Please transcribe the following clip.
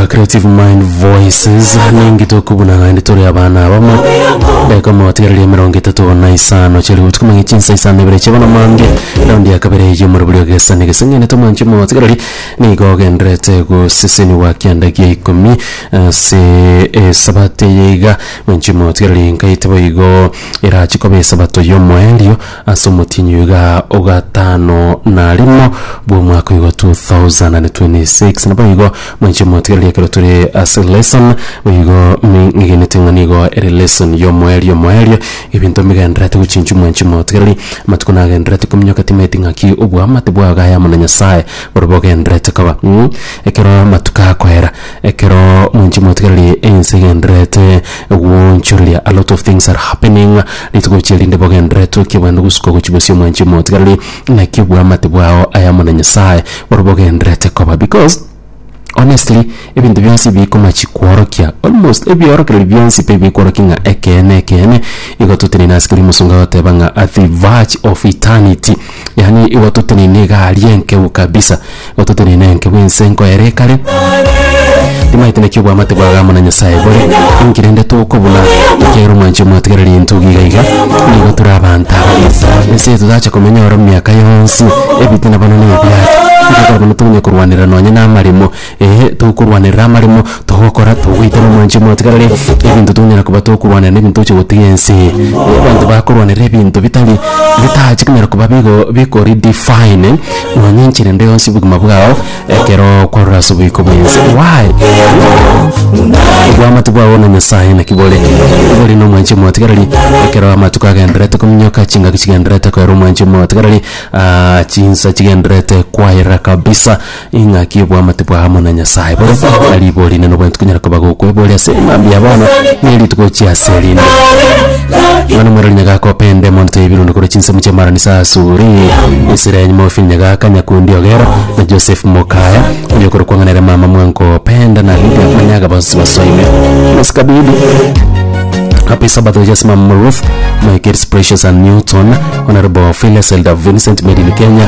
A Creative Mind Voices ningi tokobuna naende tore abana abamo ndeka motigereria emerongo etato na isano chiri gotuka mang'e chinsa isano ibere chiabona mambia raundi ya kabere ya omorobori ogesani geseng'ene tomwanche motigereri nigo ogenderete goseseniwa kianda gia ikomi ase esabato eye iga mwanche motigereri nkaete boigo erache koba esabato y'omoerio Ase omotienyi oiga o gatano na rimo bw'omwaka oigo 2026, naboigo mwanche motigereria ekero tore ase lesson, boigo ming'egenete ng'a nigo ere lesson y'omoerio omoerio, ebinto mbigendererete gochinchwa mwanche motigereria, amatuko nagendererete kominyoka timanyeti ng'aki oboamate bwao gaye amo na Nyasaye borobwo ogendererete koba. Ekero amatuko akoera, Ekero mwanche mwatigererie ense egendererete gwoonchoreria, a lot of things are happening, rituko echi erinde bogendererete okie bwende gosuka gochia bosio mwanche mwatigererie naki obwamate bwao ayamo na Nyasaye boro bogendererete koba because honestly ebinto bionsi ebi bikomachi kworokia almost ebiorokererio bionsi pi bikworokia ng'a ekeene ekeene igo totenena ase keria omosomba agoteba ng'a at the verge of eternity. Yaani igo toteneine egari enkeu kabisa, igo toteneine enke bwense enko ere kare. Timaete naki obwamate bwaga amo na Nyasaye bore, inki rende tokobuna? Ekiagera omwanchi omwatigereri intwe iga iga, nigo tore abanto aba. Ense eye totacha komenya oro miaka yonsi, ebitina bono nebiacha. Inki ekero bono tonya korwanera nonye namaremo, Ee, tokorwanerera amaremo togokora, togoitera omwanche omotigareri, ebinto tonyara koba tokorwanera nebinto toche gotiga ense. Abanto bakorwanera ebinto bitari bitachi konyara koba bigo biko redefine nonya enchera ende yonsi y'obogima bwao ekero kwarure ase oboiko bwense. Why? Obwamate bwao na Nyasaye naki bore? Bore nomwanche omotigareri ekero amatuko agendererete kominyoka, chingaki chigendererete koera omwanche omotigareri, chinsa chigendererete kwaera kabisa. Ing'aki y'obwamate bwao amo na Nyasae bore na riborio rinene obwenerete konyara koba gokwe bore ase mambia ya bono na erituko gochia ase erinde. Yohana Omwerori nyagaka opende emonto y'ebirundo korwa chinsemo chi'amara inse asure esira ya nyuma ofiri nyagaka nyakundi ogero na Joseph mokaya oyo okorokwa ng'a nere mama mwango opende na Lydia onyaga bonsi basoime Mesikabidi Happy Sabbath oyo ase mama Ruth my kids Precious and Newton Honorable Phyllis Elder Vincent made in Kenya